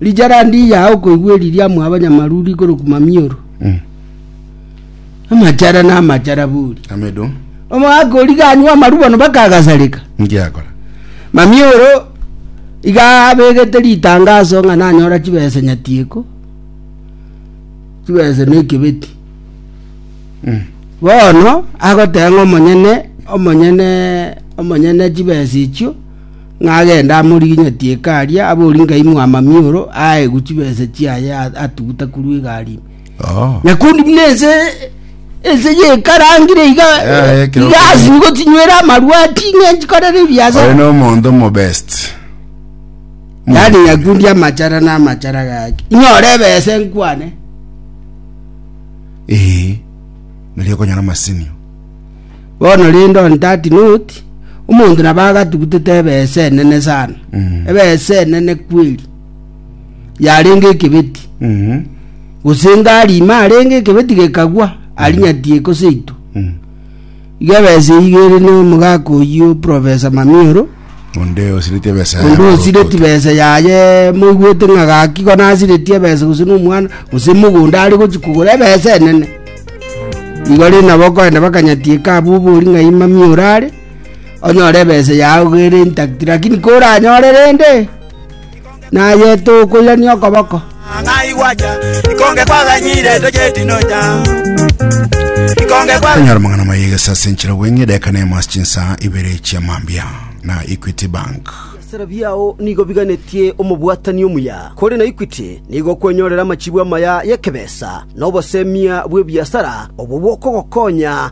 Rijarandi ya okoigwa eri ria mwaba nyamaruru igoro kumamioro. Mm. Amachara na amachara buri. Amedo. Omwaka ori ganywa amarubo no bakagasareka. Ngiakora. Mamioro iga abegete ritangaso ng'a nanyora chibesa nyatieko. Chibesa ne kibeti. Mm. Bono agoteng'a omonyene omonyene omonyene chibesa ichio ng'a agende amoriginyetie ekari aa, abori ngai mwamamioro aegwe chibesa chiaye a- atuguta korwa egari ime. Oh. Nyakundi buna ense ense yekarangire iga Eh, ekero iga kare. asiri gotinywera amarwa ating'e nchikorere Oyo ebiasara no omonto mo best. yaani nyakundi amachara na amachara gaki inyore ebese nkwane Eh. Nari okonyora masinio. Bono rende on that note, omonto nabo agatugutete ebesa enene sana, Mhm. ebesa enene kweri, yarenge ekebeti, Mhm. gose ngari ime arenge ekebeti gekagwa, arinyatie gose itu. Mhm. Iga ebesa eyio ere na omogaka oyio Professor Mamioro, Onde osiretie ebesa yaye. onde osireti besa yaye moigwete ng'a gaki igo nasireti ebesa gose na omwana gose mogonda are gochi kogora ebesa enene igo rende nabo okoenda bakanyatieka abwo obori ng'a yi mami orare onyore ebesa yago ere intact lakini koranyore rende. Naye tokoirania okoboko. Onye aro amang'ana amaya egesa ase enchera bweng'e edageka nemo ase chinsa ibere chia mambia na Equity Bank. Ebisera biao nigo biganetie omobwatani omuya, kore na Equity nigo okwenyorera amachibu amaya y'ekebesa na obosemia bw'ebiasara obwo bokogokonya